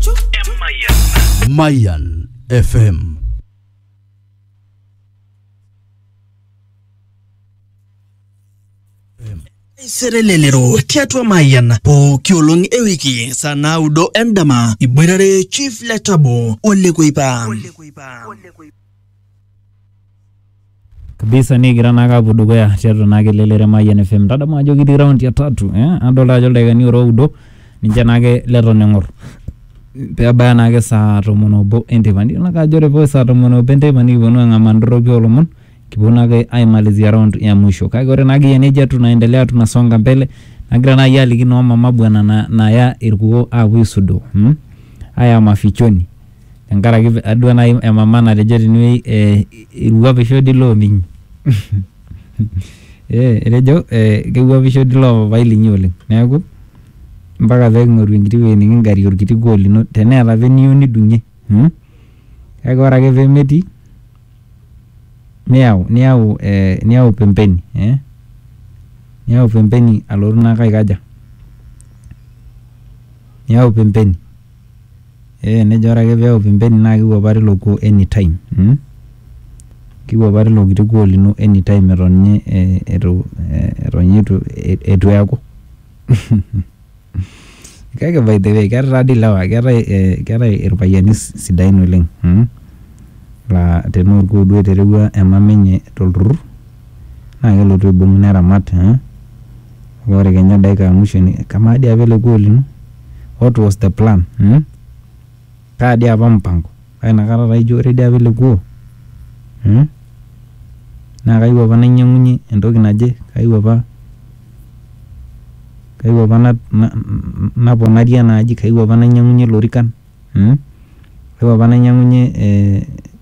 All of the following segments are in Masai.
Chu. Mayan FM. serelelero tiatua mayian pooki olong ewiki saa naudo endama iboitare chief letabo olekuipa kabisa nikigira naa aapuo dukuya tiatua naa kelelere Remayian FM. Tadamu ajo kitii round ya tatu eh, adolta ajo ildaikani ora oudo ninche naake leton eng'or pebaya naake saa tomon obo enteipa. Nidol naake ajo ore pee saa tomon obo enteipa nikiponu ang'amaa ndorroki oo lomon kiponu naake aimalizia round ya mwisho. Kake ore naake eyia neija tunaendelea tunasonga mbele nagira nai aliki noo mama bwana na naya irkuoo aapuo aisudoo mmh, haya mafichoni. tenkaraki adua nai emama natejo tenewei eh, irruapisho di loo ninyi eh, etejo eh, kewuapisho di loo papai linyi oleng neeku mpaka peking'oru enkiti wueji niking'arie orkiti kuoo lino teneeta apa eniyieu nidung'ie mm? kake ore ake pemetii niyau niyau eh, niyau pembeni eh? niyau pembeni alotu naake aikaja niyau pembeni. Ee nejo ore ake peok pembeni naa kewuapari ilo kuo anytime mmh. Kewuapari ilo kiti kuo lino anytime eton ninye eitu, eton ninye eitu eaku. Kake by the way keeta taadii ilewa keetae ilpayiani sidain oleng mmh laa tenaa olkuo duo eterewua emama enye tolturrur naa kelotu aibung neramat eh kake ore kenya dakika ya mwisho ni kamaa dii apa ele gol lino what was the plan mm kaa dii apa mpango kake inakata taa ijo ore dii apa ele kuo mm naa kayieu apa nainyiang'unyie entoki naje kayieu apa kayieu apa na naponarie ena aji kayieu apa nainyiang'unyie ilorikan mm kayieu apa nainyiang'unyie eh.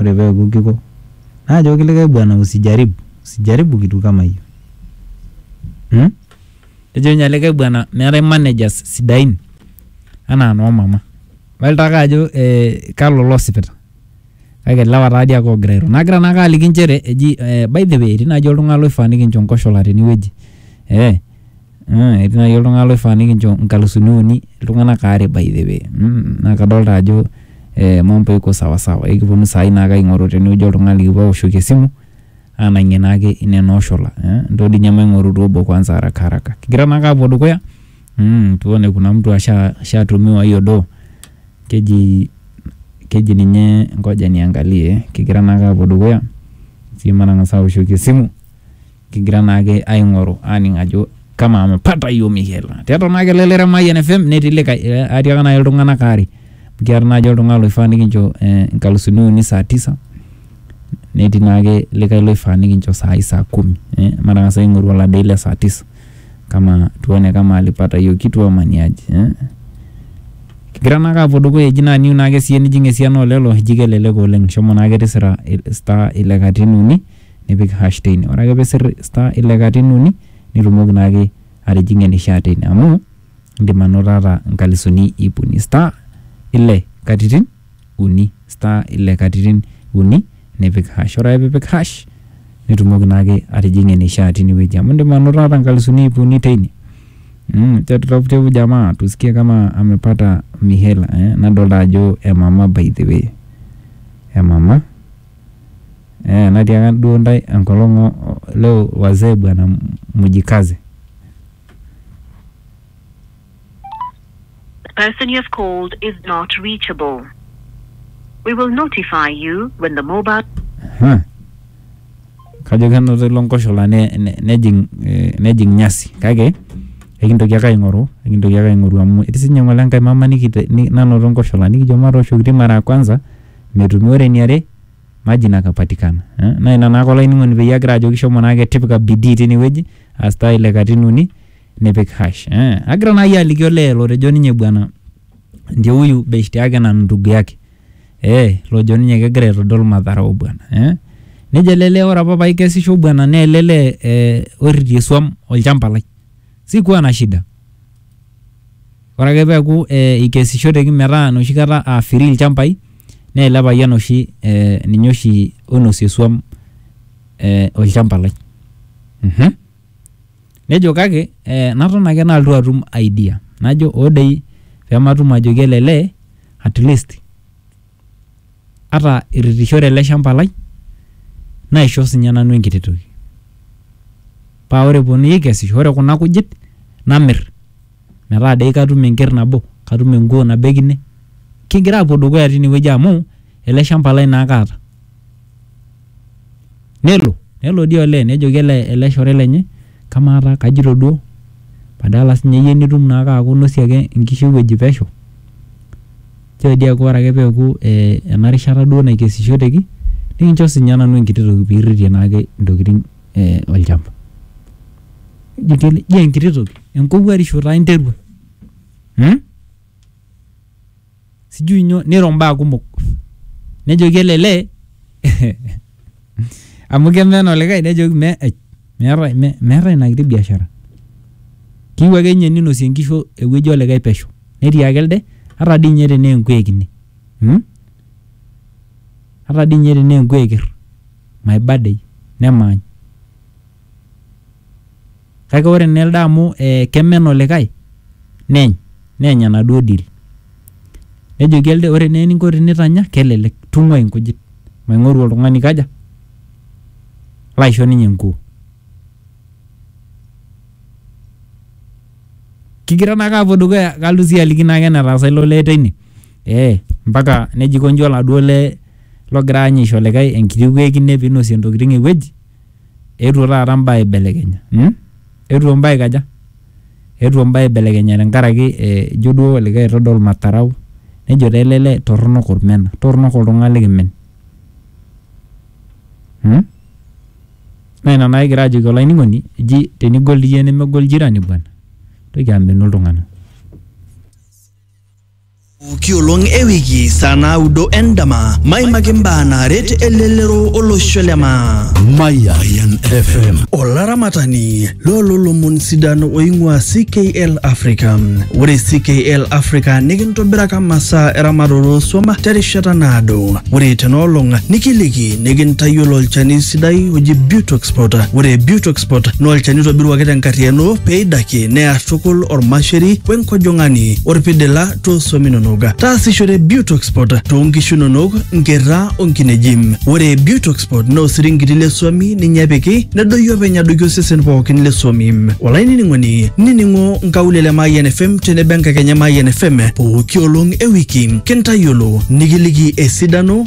Ore pee eaku kiko, najoki likae bwana usijaribu, usijaribu kitu kama hiyo. Hmm? Nejo ninye likae bwana meetae managers sidain anaa noo mama. Adol taake ajo eh, kalo losipita. Kake ilewa taadii ake oogira airo. Nagira naake aliki nchere eji eh, by the way etii naaji oltung'ani loifaa nikincho nkoshola tenewueji. Eeh. Ah, etii naaji oltung'ani loifaa nikincho nkalusuni uni iltung'anak aare by the way mm, naa kadolta ajo eh, mambo iko sawa sawa ekiponu saai naake aing'oru tenewueji oltung'ani likipuo aoshoki esimu anang'ie naake ine nooshola eh, ntoo dii inye maing'oru duo obo kwanza araka araka kigira naake apuo dukuya mm, tuone kuna mtu asha ashatumiwa hiyo doo keji keji ninye ngoja niangalie kigira naake apuo dukuya sii matang'asa aoshoki esimu. kigira naake aing'oru aning ajo kama amepata hiyo mihela tiatua naa kelele re Mayian FM netii likae eh, atiaka naaji iltung'anak aare kiata naaji oltung'ani loifaa nikincho eh, nkalusuni uni saa tisa netii naake likae loifaa nikincho saai saa kumi eh, matang'as aing'oru oladei le saa tisa kama tuone kama alipata hiyo kitu ama ni aje eh? kigira naake apuo dukuya eji naa niu naake siye nijing esiana olelo eji kelelek oleng shomo naake tisira il- star ile katitin uni nipik hash teine. Ore ake pisir star ile katitin uni nitumoki naake atijing'ie enishaa teine amu indim anoto ata inkalisuni iip uni. Star ile katitin uni, star ile katitin uni nipik hash. Ore ake piipik hash nitumoki naake atijing'ie enishaa tine wueji amu indim anoto ata inkalisuni iip uni teine. Mmh, tutafute huyu jamaa tusikie kama amepata mihela eh, nadolta ajo emama by the way, emama. Eeh natiaka duo intae enkolong leo wazee bwana mjikaze. The person you have called is not reachable. We will notify you when the mobile. Huh. Kajo kenoto ilo nkoshola ne- ne- nejing eh, nejing nyasi kake ekintoki ake aing'oru ekintoki ake aing'oru amu etii sinye ng'ole enkae mama nikite- ni- nanoto nkoshola nikijo matooshoki mara ya kwanza metumi. Ore eniare, maji nakapatikana. Naa ina naake olainining'oni peyie agira ajoki shomo naake tipika bidii tine wueji aa star ile katitin uni nipik hash. Agira naa iyie aliki olee lotejo ninye bwana ndio huyu beshte yake na ndugu yake ee lojo ninye kegira aitodol madharau bwana ee. Nejo ele lee ore apa paikesisho bwana naa ele lee ee oirritie swam olchamba lai. Sikuwa na shida. Ore ake peaku eikesishoteki metaa enoshi kata aa free ilchambai naa ele payian oshi ninye oshi oinosie esuam olchamba lai. Nejo kake naton ake nalotu atum idea najo hoo doi pee matum ajoki ele lee atleast. ata iritishore ele shamba lai naisho sinye nanu enkiti toki. Paa ore eponunui aikesisho ore kuna kujit namir metaa doi katum enker nabo, katum enkuo nabo e kine. Kigira aapuo dukuya tine wueji amu ele shamba lai naake aata. Nelo nelo dii olee nejoki ele shore lenye kamaa taa kajito duo badala sinye iyie nitum naake aaku inosie ake nkishu e wueji pesho. Nchoo dii eaku ore ake pee eaku ena rishata duo naikesishoteki nikincho sii ninye nanu enkiti toki pee irritie naake intokitin olchamba. Jio enkiti toki? Enkowuarisho taa interua mmh sijui nyoo niro imbaa kumok nejoki ele lee hehehe. Amu keme ena olikae nejoki me ai meetae me meetae ina kiti biashara. Keyieu ake ninye ninosie inkishu ewueji olikae pesho. Netiaki elde ata dii ninye tenaa enkuek ine mmh ata dii ninye tenaa enkuek eker maibadai nemaany. kake ore naa elde amu eh, kemen olikae neeny neeny enaduo deal nejoki elde ore naa eninko tinitanya kelelek tung'ua inkujit maing'oru oltung'ani kaja laisho ninye enkuo kigira naake apuo dukuya kalotu sii aliki naake enetaasa ilo lee teine eh, mpaka nejiko inji oladuo lee logira ninye aisho likae enkiti kuo ekine pinosie intokiting ewueji. eetuo taata mbaa aibelekenya mm eetuo mbaa aikaja eetuo mbaa aibelekenya tenkaraki eh ijo duo olikae aitodol matarau nejo taa ele lee torronok olmena torronok oltung'ani likimen mm naa ina naa kigira ajoki olainining'oni eji tenigol iyie nemegol jirani bwana intoki amenu iltung'ana. Pooki olong e wiki saa naudo endama maimaki mbaa naaret elelero olosho le maa. Mayan FM. Olaramatani loololomon sidan oing'ua CKL Africa. Ore CKL Africa nikintobiraka masaa eramatare oo swam terishata naado. Ore tenoolong nikiliki nikintayiolo olchani sidai oji Butoxpot. Ore Butoxpot naa olchani oitobiruaki tenkarriyiano pee eidakie near tukul ormasheri we nkojong'ani orpidila too swam inonok. Taasishore Butoxpot too nkishu inonok, nkerra o nkineji. Ore Butoxpot naa osiringiti le swami ninye epiki nedoyio openy adoiki osesen pookin le swami. Olainining'oni nining'o nkaulele e Mayian FM tenebo enkakenya e Mayian FM pooki olong e wiki kintayiolo nikiliki esidano